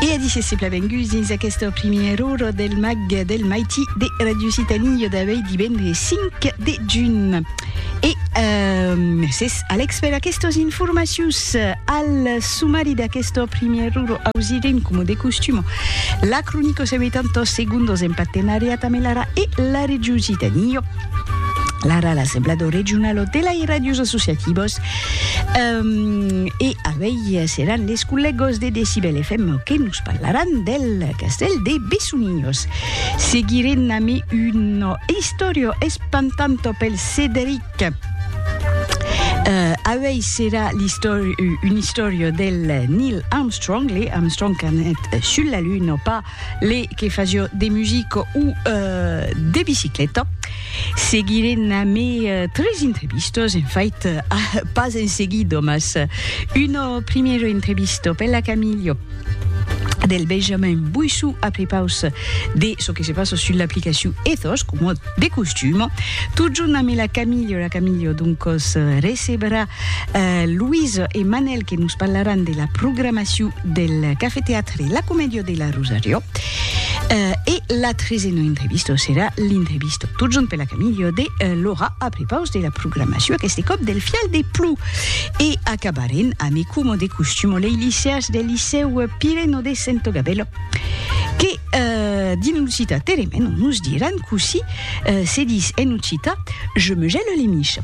E a disse se plavenguts dins aquesta primièr ora del mag del Maiti de Radio Citanillo d'avei divendres 5 de juny. E euh, mercés Alex per aquestes informacions. Al sumari d'aquesta primièr ora ausirem, com de costum, la cronica se metant tos segundos en partenariat amb l'ARA e la Radio Citanillo. L'ARA, l'Assemblado Regionalo de la Radios Associativos, E avei seràn les collègos de Decibel FM que nos parlaràn del castèl de Bessonilhos. Seguirem ami una istòria espantanta pel Cederic. Avei serà una istòria del Neil Armstrong, Lee Armstrong qu'anèt sul la Luna pas Les que fasio de music o de bicicleta. Seguirem amé tres entrevistos, en fait, pas en seguido, mas una primera entrevista per la Camillo del Benjamin Buissou a prepaus de çò que se passa sus l'aplicacion Ethos, coma de costum. Tot junt amé la Camillo, la Camillo doncos recebrà Louise e Manel que nos parlaràn de la programacion del Café Teatre entre la comedia de la Rosario eh, e la tresena entrevista serà l'entrevista tot junt per la Camillo de eh, Laura a prepaus de la programació aquest cop del fial de plou. E acabarem a me como de costumo les liceas del liceu Pireno de Sento Gabello que eh, din l'occità teremeno nos diran così eh, se dis en occità je me gèle les miches.